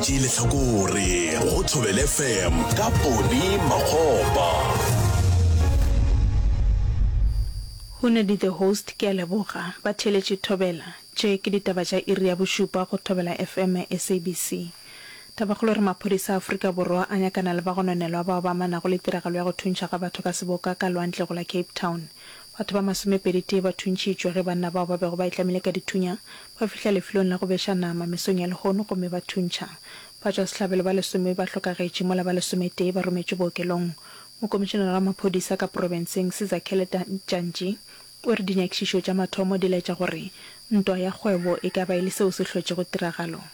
Tše lehlakore go Thobel FM ka Pone Makgopa. Go na di the host ke a leboga ba theletše thobela tše ke ditaba tša iri ya bošupa go thobela FM SABC tabakgolo re maphodisa a Afrika Borwa a nyakana le bagononelwa bao ba amanago le tiragalo ya go thuntšha ga batho ka seboka ka lwantle go la Cape Town Batho ba masomepedi-tee ba thuntšhitšwe ge banna bao ba bego ba itlamile ka dithunya ba fihla lefelong la go beša nama mesong ya lehono gomme ba thuntšha. Batšwasehlabelo ba lesome ba hlokagetše mola ba lesometee ba rometšwe bookelong. Mokomišenare wa maphodisa ka profenseng Sizakhele Ntjantji o re dinyakišišo tša mathomo di laetša gore ntwa ya kgwebo e ka ba e le seo se hlotšego tiragalo.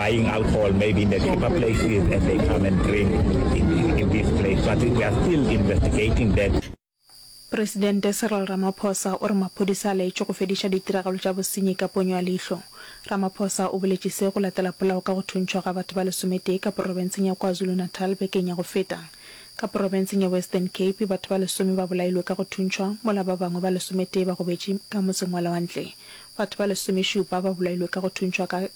Buying alcohol maybe in the cheaper places and they come and drink in, in this place. But we are still investigating that. Presidente Cyril Ramaphosa o re maphodisa a laetšwe go fediša ditiragalo tša bosenyi ka ponyo ya leihlo. Ramaphosa o boletše se go latela polao ka go thuntšhwa ga batho ba lesometee ka porofenseng ya KwaZulu-Natal bekeng ya go feta. Ka porofenseng ya Western Cape, batho ba lesome ba bolailwe ka go thuntšhwa, mola ba bangwe ba lesometee ba gobetše ka motseng wa Lewantle. Batho ba lesomešupa ba bolailwe ka go thuntšhwa ka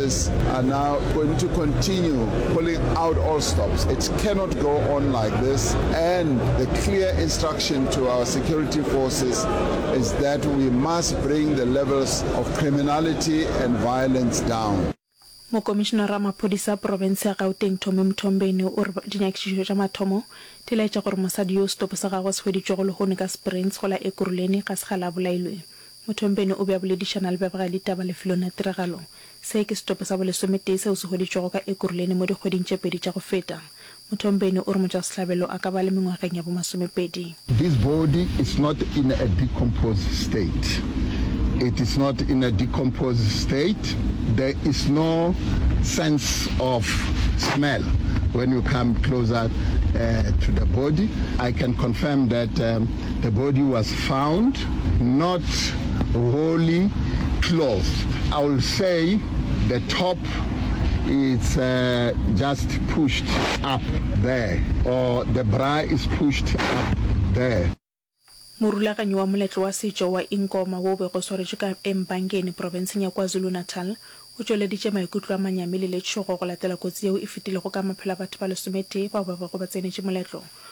This are now going to continue pulling out all stops. It cannot go on like this. And the clear instruction to our security forces is that we must bring the levels of criminality and violence down. Mokomišenara wa maphodisa a profense ya Gauteng Tommy Mthombeni o re dinyakišišo tša mathomo di laetša gore mosadi yo setopo sa gagwe se hweditšwego lehono ka Springs go la Ekurhuleni ga se kgale a bolailwe. Mothombeni o be a boledišana le babega ditaba lefelong la tiragalo. Se ke setopo sa bolesometee seo se hweditšwego ka Ekuruleni mo dikgweding tše pedi tša go feta. Mothombeni o re motšwasehlabelo a ka ba le mengwageng ya bomasomepedi. This body is not in a decomposed state. It is not in a decomposed state. There is no sense of smell when you come closer to the body. I can confirm that the body was found not holy cloth I will say the top it's just pushed up there or the bra is pushed up there. Morulaganyi wa moletlo wa setšo wa Ingoma wo o bego o swaretšwe ka Empangeni profenseng ya KwaZulu-Natal o tšweleditše maikutlo a manyami le letšhogo go latela kotsi yeo e fetilego ka maphelo a batho ba lesometee bao ba bego ba tsenetše moletlo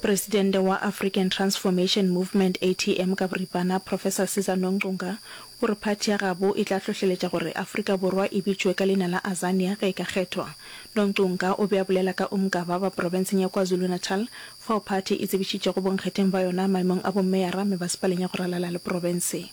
Presidente wa African Transformation Movement, ATM, ka boripana, Professor Cesar Nongcunga, o re phathi ya gabo e tla hlohleletša gore Afrika Borwa e bitšwe ka leina la Azania ge e ka kgethwa. Nongcunga o be a bolela ka Umgababa profenseng ya KwaZulu-Natal fao phathi e tsebišitšego bonkgetheng ba yona maemong a bomeyara mebasepaleng ya go ralala le profense.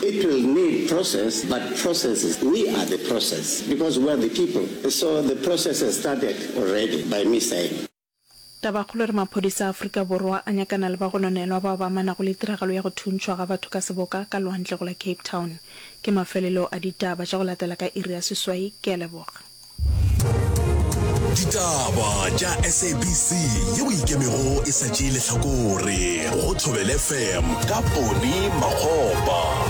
It will need process but processes we are the process because we are the people so the process has started already by me saying. Tabakgolo re maphodisa a Afrika Borwa a nyakana le bagononelwa bao ba amanago le tiragalo ya go thuntšhwa ga batho ka seboka ka lwanthle go la Cape Town. Ke mafelelo a ditaba tša go latela ka iri ya seswai. Ke a leboga. Ditaba tša SABC yeo e ikemego e sa tšee lehlakore go Thobela FM ka Pone Makgopa.